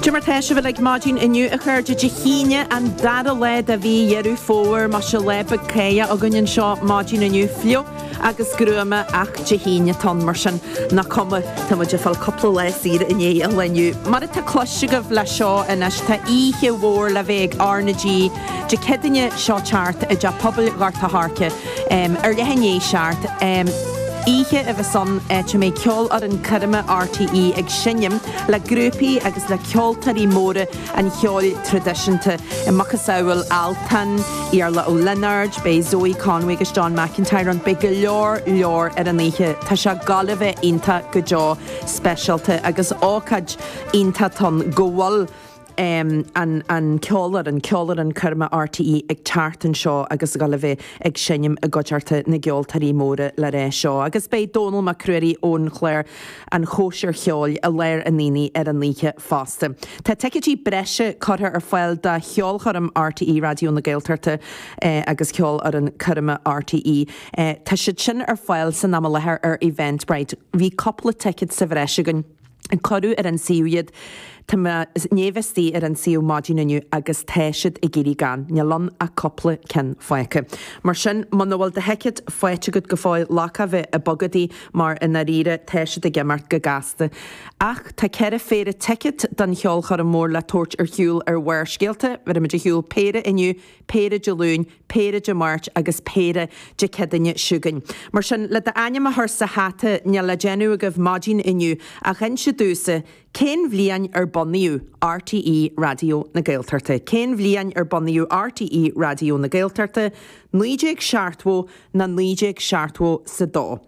Cad é mar tá sibh uilig maidin inniu, a chairde, Dé hAoine, an dara lá de mhí Dheireadh Fómhair. Más ea, lá beag cáidheach againn anseo maidin inniu, fliuch agus gruama, ach Dé hAoine atá ann, mar sin nach cuma, tá muid ag fáil cúpla lá saor i ndiaidh an lae inniu. Mar atá cloiste agaibh le seo anois, tá oíche mhór le bheith ag R na G Dé Céadaoine seo ag teacht i dTeach Pobail Ghort a' Choirce. ar leath i ndiaidh a seacht. Oíche ar dóigh a bheas ann, áit a mbeidh Ceolfhoireann Coirme RTÉ ag seinm le grúpaí agus le ceoltóirí móra an cheoil traidisiúnta a macasamhail Altan, Iarla Ó Lionáird, beidh Zoe Conway agus John McIntyre ann, beidh go leor leor ar an oíche. Tá sé ag gabháil a bheith iontach go deo speisialta agus ócáid iontach atá ann go bhfuil. an ceolfhoireann, Ceolfhoireann Coirme RTÉ ag teacht anseo agus ag gabháil a bheith ag seinm i gcuideachta na gceoltóirí móra le rá seo. Agus beidh Dónall Mac Ruairí ón chlár An Chóisir Cheoil i lár an aonaigh ar an oíche fosta. Tá ticéidí breise curtha ar fáil do cheolchoirm RTÉ Raidió na Gaeltachta agus Ceolfhoireann Coirme RTÉ. Tá siad sin ar fáil san am i láthair ar Eventbrite. Bhí cúpla ticéad sa bhreis againn. Cuireadh ar an suíomh iad. Tá mé i ndiaidh a bheith istigh ar an suíomh maidin inniu agus tá siad ag éirí gann. Níl ann ach cúpla ceann fágtha. Mar sin, muna bhfuil do thicéad faighte agat go fóill, bhuel caithfidh tú bheith ag bogadaí mar i ndáiríre tá siad ag imeacht go gasta. Ach tá ceithre phéire ticéad don cheolchoirm mór le tabhairt ar shiúl ar Bharrscéalta. Bhéarfaimid ar shiúl péire inniu, péire Dé Luain, péire Dé Máirt agus péire Dé Céadaoine seo chugainn. Mar sin, le d'ainm a chur sa hata, níl le déanamh agaibh maidin inniu ach inse domhsa cén bhliain ar bunaíodh RTÉ Raidió na Gaeltachta. Cén bhliain ar bunaíodh RTÉ Raidió na Gaeltachta? Naoi déag seachtmhó ná naoi déag seachtmhó 's a dó?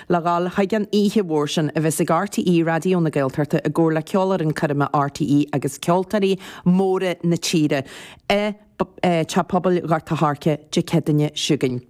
Le dhul chuig an oíche mhór sin a bheas ag RTÉ Raidió na Gaeltachta i gcomhar le Ceolfhoireann Coirme RTÉ agus ceoltóirí móra na tíre i dTeach Pobail Ghort a' Choirce Dé Céadaoine seo chugainn.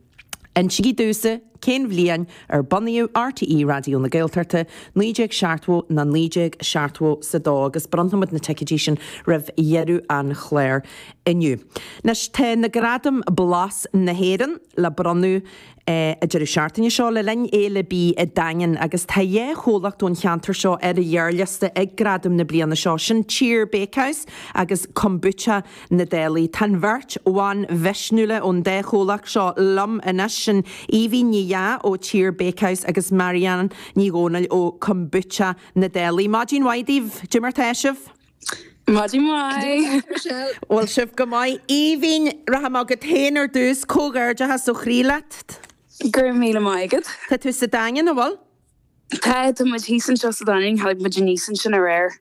Insigí domhsa cén bhliain ar bunaíodh RTÉ Raidió na Gaeltachta, naoi déag seachtmhó ná naoi déag seachtmhó 's a dó, agus bronnfaimid na ticéidí sin roimh dheireadh an chláir inniu. Anois tá na gradaim Blas na hÉireann le bronnadh. an deireadh seachtaine seo, le linn fhéile bídh an Daingin, agus tá dhá chomhlacht ón cheantar seo ar an ghearrliosta ag gradaim na bliana seo, sin Tír Bakehouse agus Kombucha na Dálaigh. Tá an bheirt bhan mhisniúla ón dá chomhlacht seo liom anois, sin Aoibhín Ní Dheá ó Tír Bakehouse agus Marianne Ní Dhomhnaill ó Kombucha na Dálaigh. Maidin mhaith daoibh. Cad é mar tá sibh. Maidin mhaith! Bhfuil sibh go maith? Aoibhinn, rachaidh mé chugat féin ar dtús, comhghairdeachas ó chroí leat. Go raibh míle maith agat. Tá tú sa Daingean, an bhfuil? Tá, tá muid thíos anseo sa Daingean, tháinig muid aníos ansin aréir.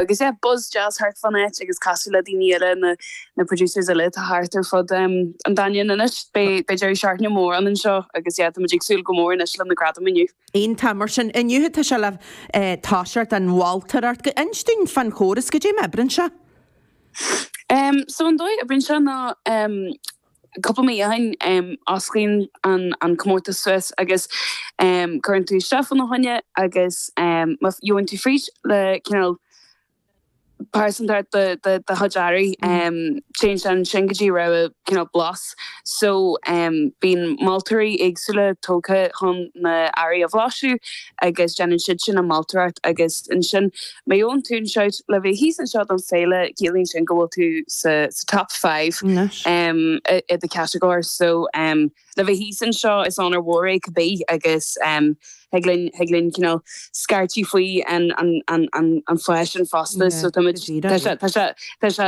Agus yeah, buzz deas thart fán áit agus castáil le daoine eile, na na producers eile atá thart ar fud an Daingin anois. Beidh deireadh seachtaine mór againn anseo agus yeah, tá muid ag súil go mór anois le na gradaim inniu. Iontach, mar sin, inniu tá sé le toiseacht an mholtóireacht go inis dúinn fán chóras. Goidé mar a oibreann sé? So an dóigh a n-oibreann sé ná cúpla mí ó shin osclaíonn an comórtas suas agus cuireann tú isteach fá na choinne agus má gheobhann tú fríd le cineál pearsanta de do chuid earraí. Téann sé ansin go dtí rogha cineál blas so bíonn moltóirí éagsúla tógtha chun na earraí a bhlaiseadh agus déanann siad sin an mholtóireacht agus ansin má gheobhann tú an shout le bheith thíos anseo don féile ciallaíonn sin go bhfuil tú sa top five i do chatagóir so Le bheith thíos anseo, is onóir mhór é cibé agus thig linn, thig linn cineál scairtigh faoi an pháis sin fosta. So táimid, tá sé, tá sé, tá sé,